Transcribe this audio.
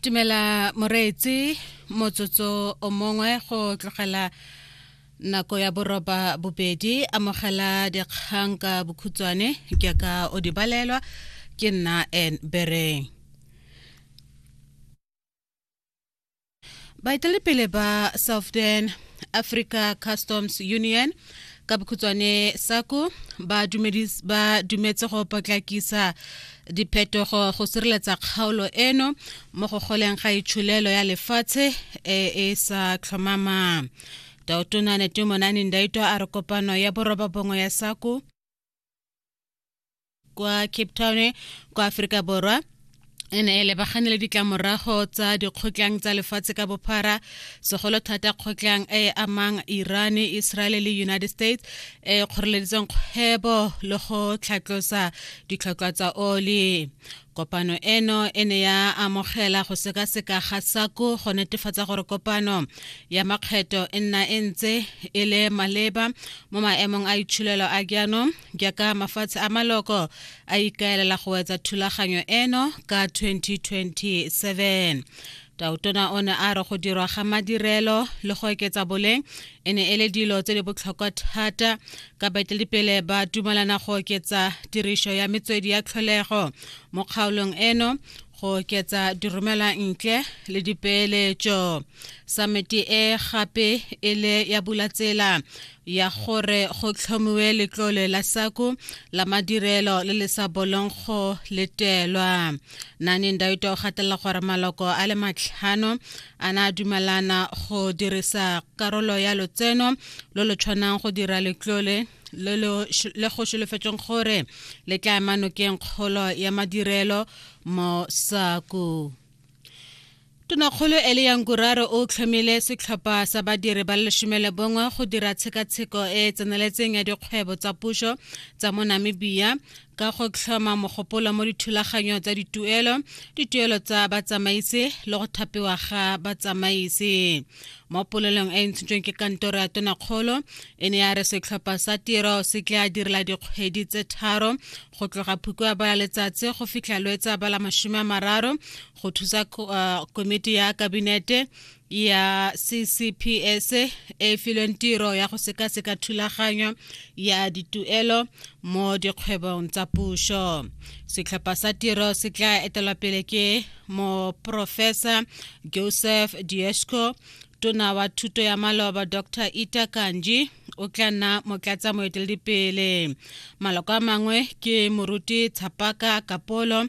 tumela moreetsi motsotso o mongwe go tlogela nako ya boroba bobedi amogela dikgang ka bokhutshwane ke ka o di balelwa ke nna n bereng baetelepele ba southern africa customs union ka bokhutswane sako ba dumetse go potlakisa diphetogo go sireletsa kgaolo eno mo go goleng ga itsholelo ya lefatshe e e sa tlhomamang taotona netemonane ndaito a re kopano ya boroba bongwe ya sako kwa cape town kwa aforika borwa e ne e lebagane le ditlamorago tsa dikgotlang tsa lefatshe ka bophara segolo thata kgotlang e e amang iran israel le united states e kgoreleditseng kgwebo le go tlhatlosa ditlhotlhwa tsa oli Kopano eno e ne ya amogela go sekaseka ga SACO go netefatsa gore kopano ya makgetho e nna e ntse e le maleba mo maemong a itshulelo a jaanong jaaka mafatshe a maloko a ikaelela go wetsa thulaganyo eno ka 2027 Tautona o ne a re go dirwa ga madirelo le go oketsa boleng e ne e le dilo tse di botlhokwa thata ka baeteledipele ba dumalana go oketsa tiriso ya metswedi ya tlholego mo kgaolong eno go oketsa diromelwa ntle le dipeeletso samete e gape e le ya bula tsela ya gore go tlhomiwe letlole la sako la madirelo le le sa bolong go letelwa nane ndaito o gatelela gore maloko a le matlhano a na a dumelana go dirisa karolo ya lotseno lo lo tshwanang go dira letlole le go solofetsweng gore le tla emanokeng kgolo ya madirelo mo sako Tonakgolo Eliya Nguraro o tlhomile setlhopha sa badiri ba lesome le bongwe go dira tshekatsheko e e tseneletseng ya dikgwebo tsa puso tsa mo Namibia ka go tlhoma mogopolo mo dithulaganyong tsa dituelo, dituelo tsa batsamaisi le go thapiwa ga batsamaisi. Mo polelong e e ntshitsweng ke kantoro ya tonakgolo e ne ya re setlhopha sa tiro se tla direla dikgwedi tse tharo go tloga phukwa bala letsatsi go fitlha lwetsa bala masome a mararo go thusa uh, komiti ya kabinete ya ccps e e filweng tiro ya go sekaseka thulaganyo ya dituelo mo dikgwebong tsa puso setlhopha sa tiro se tla etelwa pele ke moprofesa joseph diesco tona wa thuto ya maloba dr ita kanji o tla nna motlatsa moeteledipele maloko a mangwe ke moruti tshapaka kapolo